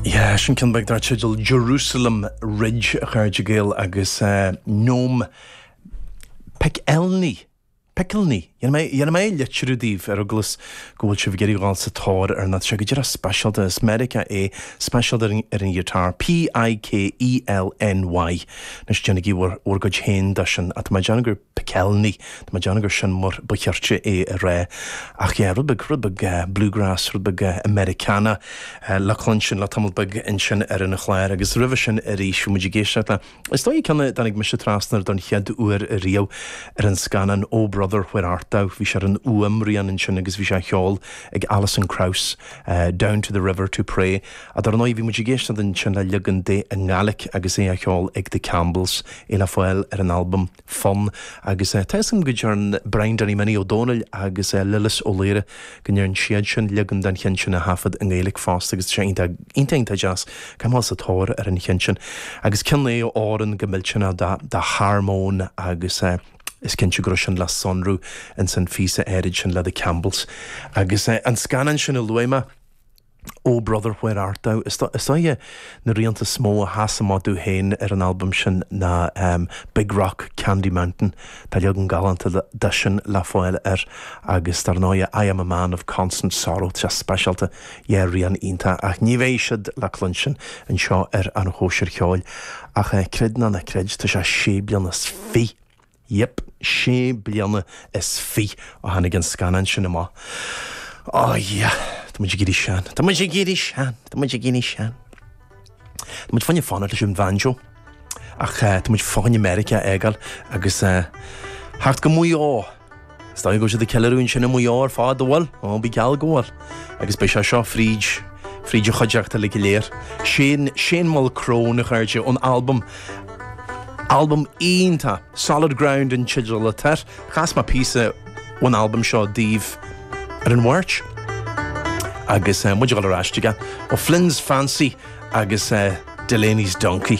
Yeah, sin ceann beag dar teideal Jerusalem Ridge, a chairde Gael, agus eh, Noam Pikelny. Pikelny. Dhéanfaidh mé, dhéanfaidh mé é a litriú daoibh ar eaglas go bhfuil sibh ag iarraidh dhul sa tóir air, nó tá sé go díreach speisialta, as Meiriceá é, speisialta ar an, ar an ghiotár. P-i-k-e-l-n-y. Anois déanaigí bhur, bhur gcuid féin de sin. Ach tá mé ag déanamh gur. Pikelny. Tá mé ag déanamh gur sin mar ba chirte é a rá. Ach yeah, rud beag, rud beag bluegrass, rud beag Americana le cluinstin le tamall beag ansin ar an chlár. Agus roimhe sin arís, bhí muid ag éisteacht le, is dóigh, ceann a dtáinig mise trasna air don chéad uair riamh ar an scannán Oh Brother, Where Art Thou. Bhí sé ar an fhuaimrian ansin agus bhí sé á cheol ag Alison Krauss, Down to the River to Pray. Ach dar ndóigh, bhí muid ag éisteacht ansin le leagan de i nGàidhlig agus é á cheol ag The Campbells, é le fáil ar an albam Fonn, agus tá 'fhios agam go ndearn Brian Danny Minnie Ó Domhnaill agus Lillis Ó Laoire, go ndearn siadsan leagan den cheann sin a thaifead i nGaeilge fosta agus tá sé iontach, iontach, iontach deas. Caithfidh mé a dhul sa tóir ar an cheann sin. Agus ceann a fhóireann go millteanach dá, dá harmóin agus is cinnte go raibh sin le sonrú ins an phíosa áirid sin le The Campbells. Agus an scannán sin a luaigh mé, Oh Brother Where Art Thou? Is dóiche na rianta is mó a sheas amach domh féin ar an albam sin ná Big Rock, Candy Mountain, tá leagan galánta de sin le fáil air, agus dar ndóighe I Am A Man Of Constant Sorrow, tá sé speisialta, dhá rian iontach, ach ní bheidh siad le cluinstin anseo ar An Chóisir Cheoil, ach creid nó ná creid, tá sé sé bliana is fi! Yep, sé bliana is fiche ó tháinig an scannán sin amach. Oh yeah, tá muid ag éirí sean, tá muid ag éirí sean, tá muid ag éirí sean. Tá muid fá choinne fanacht leis an bhanjo, ach tá muid fá choinne Meiriceá a fhágáil agus a theacht go Maigh Eo. Is dóigh go bhfuil siad ag ceiliúradh ansin i Maigh Eo ar fad, an bhfuil? Ó, bíodh geall go bhfuil, agus beidh sé seo fríd, fríd an chuideachta uilig go léir. Sin Shane Mulchrone, a chairde, ón albam, albam iontach, Solid Ground an teideal atá air, chas mé píosa ón albam seo daoibh ar an Mháirt, agus muid ag dul ar ais chuige, O'Flynn's Fancy agus Delaney's Donkey.